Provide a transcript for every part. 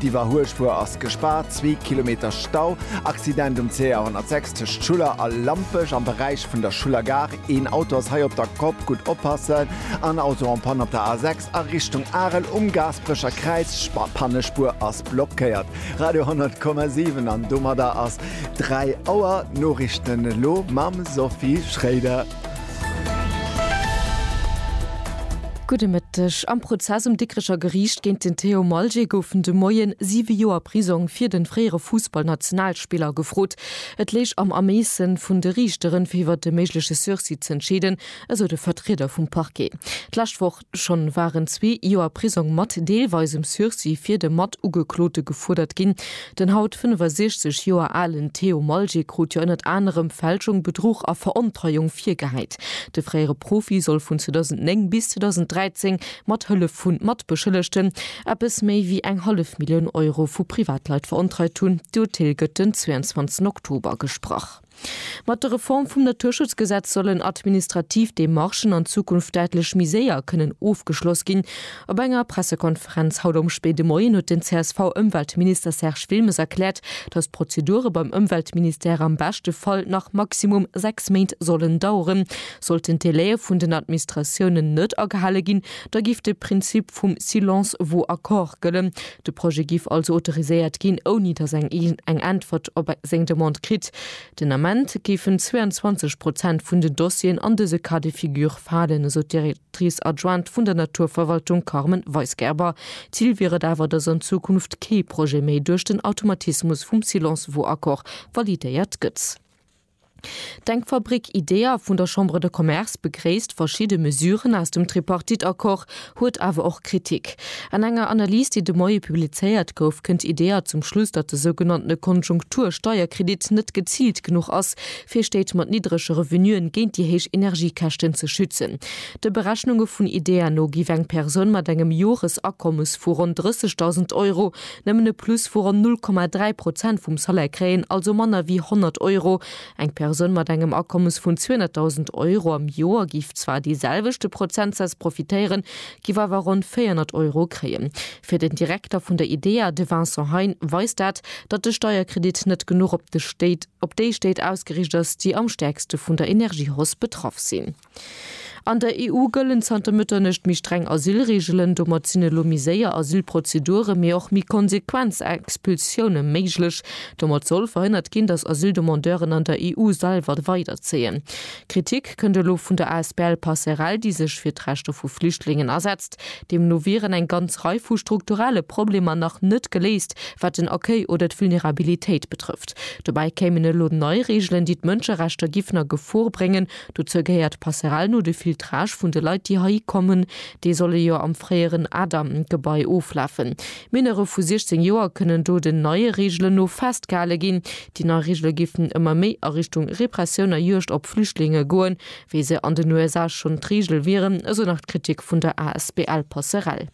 D'Iwwerhuelspur ass gespaart, zwee Kilometer Stau. Accident um CR 106 tëscht Schuller a Lampech am Beräich vun der Schuller Gare. Een Auto ass hei op der Kopp, gutt oppassen. An Auto en Panne op der A 6 a Richtung Arel um Gaasperecher Kräiz, Panne, Spur ass blockéiert. Radio 100,7 an domadder ass 3 Auer. D'Norichten elo mam Sophie Schréider. Gudde Mëtteg. Am Prozess um Dikrecher Geriicht géint den Théo Malger goufen de Moie siwe Joer Prisong fir de fréiere Fussballnationalspiller gefrot. Et léich am Ermeesse vun de Riichteren, fir iwwert e méigleche Sursis z'entscheeden, esou de Vertrieder vum Parquet d'lescht Woch. Schonn waren zwee Joer Prisong mat deelweisem Sursis fir de Matugeklote gefuerdert ginn. Den haut 65 Joer alen Theo Malje krut jo ënnert anerem Fälschung, Bedruch a Verontreiung virgehäit. De fréiere Profi soll vun 2009 bis 2013 mat Hëllef vu Matbeschëllegten eppes méi wéi eng hallef Millioun Euro vu Privatleit verontreit hunn. D'Urteel gëtt den 22 Oktober gesprach. Mat der Reform vum Naturschutzgesetz sollen administrativ Demarchen an Zukunft däitlech méi séier kënnen ofgeschloss ginn. Op enger Pressekonferenz haut am spéide Moien huet den CSV-Ëmweltminister Serge Wilmes erkläert, datt d'Prozedure beim Ëmweltministère am beschte Fall nach maximum sechs Méint sollen daueren. Sollten d'Delaie vun den Admnistratiounen net agehale ginn, da géif de Prinzip vum silence vaut accord gëllen. De Projet giff also autoriséiert ginn, ouni datt eng een eng Äntwert op seng Demande kritt. Den Ament géifen 22 Prozent vun den Dossieren an dëse Cas de figure falen, esou d'Directrice adjointe vun der Naturverwaltung Carmen Weisgerber. Zil wier et awer, datt an Zukunft kee Projet méi duerch den Automatismus vum Silence vaut accord validéiert gëtt. D'Denkfabrik IDEA vun der Chambre de Commerce begréisst verschidde Mesuren aus dem Tripartite-Accord, huet awer och Kritik. An enger Analys, déi de Moie publizéiert gouf, kënnt IDEA zum Schluss, datt de sougenanntene Konjunktur-Steierkredit net geziilt genuch ass, fir Stéit mat niddrege Revenuen géint déi héich Energiekäschten ze schützen. De Berechnunge vun IDEA no giff eng Persoun mat engem Joresakommes vu ronn 30.000 Euro Nëmmen e Plus vu ronn 0,3 Prozent vum Salaire kréien, also manner wéi 100 Euro. Eng Persoun mat engem Akommes vun 200.000 Euro am Joer géif zwar dee selwechte Prozentsaz profitéieren, géif awer ronn 400 Euro kréien. Fir den Direkter vun der IDEA, de Vincent Hein, weist dat, datt de Steierkredit net genuch op de Stéit, op déi Stéit ausgeriicht ass, déi am stäerkste vun der Energiehausse betraff sinn. An der EU gëllen zanter Mëtternuecht méi streng Asylreegelen. Domat sinn elo méi séier Asylprozeduren, mee och méi konsequent Expulsioune méiglech. Domat soll verhënnert ginn, datt Asyldemandeuren an der EU selwer weiderzéien. Kritik kënnt elo vun der asbl Passerell, déi sech fir d'Rechter vu Flüchtlingen asetzt. Deemno wieren eng ganz Rei vu strukturelle Problemer nach net geléist, wat den Accueil oder d'Vulnerabilitéit betrëfft. Dobäi kéimen elo nei Reegelen, déi d'Mënscherechter giffen a Gefor bréngen. Dozou gehéiert d'Passerelle no de Filtrage vun de Leit, déi heihi kommen. Déi solle jo am fréieren Adam Gebai oflafen. Minere vu 16 Joer kënnen do den neie Reegelen no festgehale ginn. Déi nei Reegele géifen ëmmer méi a Richtung Repressioun a Juegd op Flüchtlinge goen, wéi se an den USA schonn d'Reegel wieren, esou nach d'Kritik vun der asbl Passerelle.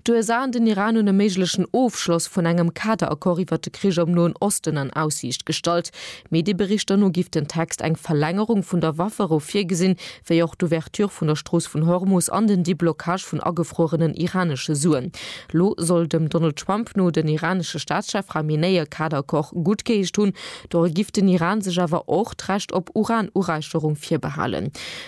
D'USA an den Iran hunn e méiglechen Ofschloss vun engem Kaderaccord iwwer de Krich am Noen Osten an Aussiicht gestallt. Medieberichter no giff den Text eng Verlängerung vun der Wafferou virgesinn, wéi och d'Ouverture vun der Strooss vun Hormus an den Deblockage vun agefruerenen iranesche Suen. Lo soll dem Donald Trump no den iranesche Staatschef Khamenei e Kaderaccord guttgeheescht hunn. Doru giff den Iran sech awer och d'Recht op Uranureicherung virbehalen.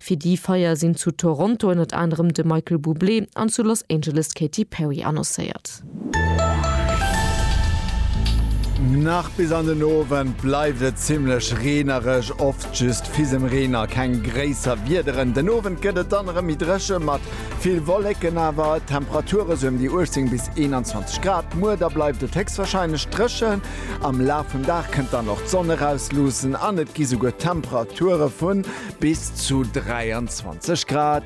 Fir déi Feier sinn zu Toronto ënnert anerem de Michael Bublé an zu Los Angeles d'Katy Perry annoncéiert. Nach bis an den Owend bleift et zimmlech reenereg, oft just Fisemreen a keng gréisser Wiederen. Den Owend gëtt et dann erëm méi dréche mat vill Wollécken, awer et Temperature sou ëm déi 18 bis 21 Grad. Muer da bleift et héchstwarscheinlech dréchen, am Laf vum Dag kënnt dann och d'Sonn eraus luussen an et gi souguer Temperature vu Bis zu 23 Grad.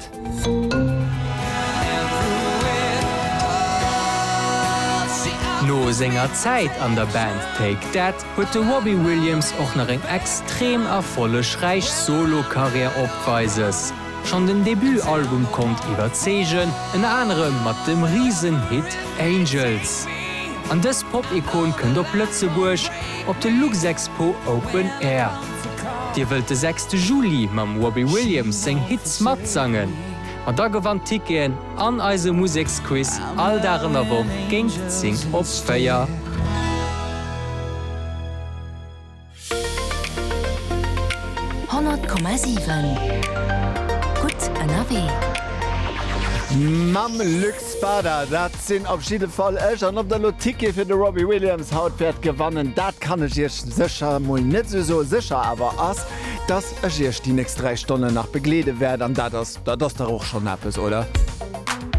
No senger Zäit an der Band Take That huet de Robbie Williams och nach eng extrem erfollegräich Solo-Karriär opweises. Schonn den Debut-Album konnt iwwerzeegen, ënner anerem mat dem Risen-Hit Angels. An dës Pop-Ikon kënnt op Lëtzebuerg op de Luxexpo Open Air. Dir wëllt de sechste Juli mam Robbie Williams seng Hits matsangen? Ma da gewannt Ticketen an eise Museksquiz all Dag an der Woch géint 10 op 4. Honnert Komma sieben, gutt ënnerwee! Mam Luc Spada, dat sinn op jidde Fall ech. An ob der elo Tickete fir de Robbie Williams haut wäert gewannen, dat kann ech iech sécher mol net esou soen. Sécher awer ass, dass ech iech déi nächst 3 Stonnen nach begleede wäert. An dat ass, dat ass dach och schonn eppes, oder?